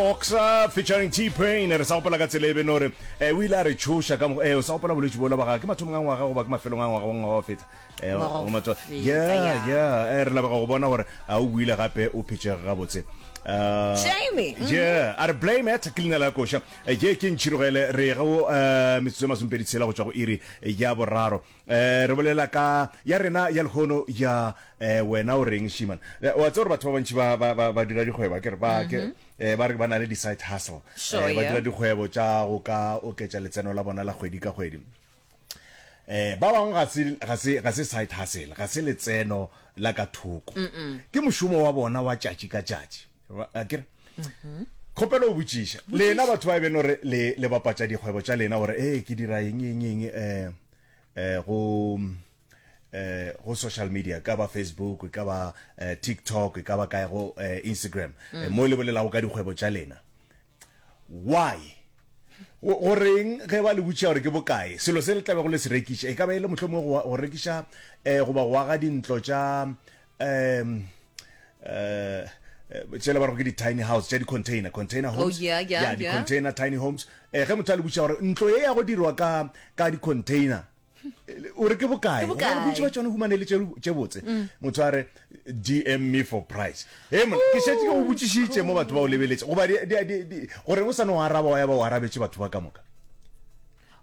Oxa featuring T-Pain re sa gopola ka tsela e be no re eh, o ile a re tšhoša ka mokgwa eh, o sa gopola bolwetši bola ba gagwe ke mathomong a ngwaga goba ke mafelong a ngwaga wa ngwaga wa feta eh, Ngwaga wa go matso- feta, yeah, ya. yeah eh, re labega go bona gore a o buile gape o phetšege gabotse Uh, Jamie, mhm. yeah a re blame at ke leina la koša Eh, ye ke ntšhirogele re ga o eh, metsotso e masomepedi tshela go tšwa go iri ya boraro Re bolela ka ya rena ya lehono ya wena o reng Shiman. Wa tseba gore batho ba bantši ba ba ba ba dira dikgwebo a kere ba ke ba re ba na le di side hustle. Sure, Ba yeah. dira dikgwebo tša go ka oketša letseno la bona la kgwedi ka kgwedi. Eh ba bangwe ga se ga se ga se side hustle, ga se letseno la ka thoko. Ke mošomo wa bona wa tšatši ka tšatši. akere mm-hmm. kgopelo o botšiša lena batho ba e beno re le bapatša dikgwebo tša lena gore ee ke dira eng eng eng um um go eh go social media ka ba facebook ka ba eh, tiktok ka ba kae go eh, instagram mm. eh, mo le bolelago ka dikgwebo tša lena Why? Go, go reng ge ba le botšiša gore ke bokae selo se le tlabe go le se rekiša? E ka ba e le mohlomongwe go, go rekiša eh, goba go aga dintlo tša um eh, tšele ba re ke di-tiny house tša di-container container oh, homes oh, yeah, yeah, yeah, di-container yeah. tiny homes eh, ge motho a le botšiša gore ntlo ye ya go dirwa ka, ka di-container o re ke bokae bontši ba tsone humane le tše botse mm. motho a re dm me for price e mona ke šetse ke go botšišitše mo batho ba o lebeletse goba gore o sane o araba wa ya ba o arabetse batho ba ka moka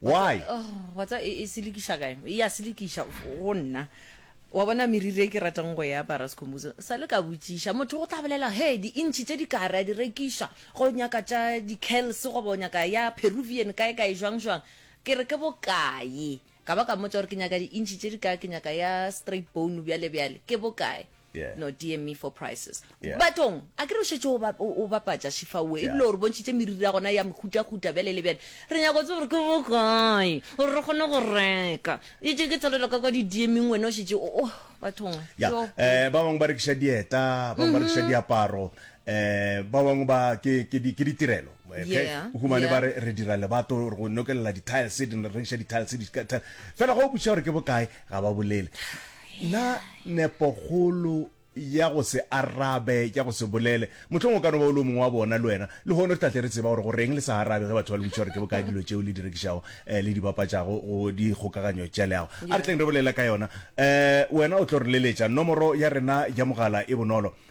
why watsa oh, e, e selekiša kae e ya selekiša go nna wa bona meriri e ke ratang go ya barascombuso sa le ka botšiša motho go tla bolela he di-intšhi tse di kare a di rekiša go nyaka tša di-cals goba o nyaka ya peruvian kae kae jwang jwang Ke re, Ke bokae? Ka ba ka mmotša gore ke nyaka di-inch tše dikae, ke nyaka ya straight bone bjale bjale, ke bokae? Yeah. No, DM me for prices. Yeah. Batong, a ke re o šetše o, ba, o, o bapatša Shifa oe, Yeah. ebile o re bontšhitše meriri ya gona ya mehutahuta bjale le bjale. Re nyaka go tseba gore ke bokae gore re kgone go reka. Etše ke tshwarelwa ka kwa di-DM-ing wena o šetše o, oh, bathong, Ya, yo. eh, ba bangwe ba rekiša dieta, ba bangwe ba rekiša diaparo, eh, ba bangwe ba, ke, ke, di, ke ditirelo. Yeah, o humane yeah. ba re re dira lebato re go nokelela di-tiles di ne re rekiša di-tiles di ka- tile. fela go botšiša gore ke bokae ga ba bolele na nepogolo ya go se arabe ya go se bolele mohlong o ka no ba o le o mongwe wa bona le wena le gone re tlatle re tseba gore go reng le sa arabe ge batho ba le botšiša gore ke bokae dilo tšeo le di rekišago um le di bapatšago go dikgokaganyo tša leago a re tleng re bolela ka yona um wena o tlo re leletša nomoro ya rena ya mogala e bonolo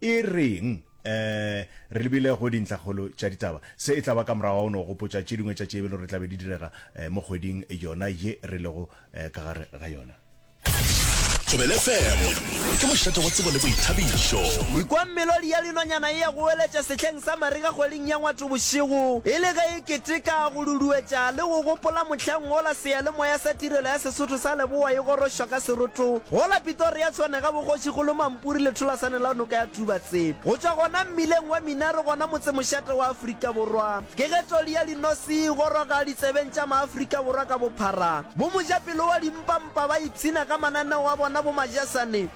E reng? Ee, re lebile go dintlhakgolo tša ditaba. Se e tla ba ka morago ga go no gopotša tše dingwe tša tše e be le gore tla be di direga mo kgweding yona ye re lego ka gare ga yona. Thobele FM, ke mošate wa tsebo le boithabišo. Ikwa melodi ya linonyana e ya go weletša sehleng sa mariga kgweding ya Ngwatobošego e le ge e Keteka, go duduetša le go gopola mohlang wola Seyalemoya sa Tirelo ya Sesotho sa Leboa e gorošwa ka seroto wola Pitoria Tshwane ga bogoši golo Mampuri letholasaneng la noka ya Tubatse. Go tšwa gona mmileng wa Minare gona motsemošate wa Afrika Borwa, ke ge toli ya Linosi e goroga ditsebeng tša Maafrika Borwa ka bophara. Bomojapelo wa Dimpampa ba ipshina ka mananeo a bona bomajasane,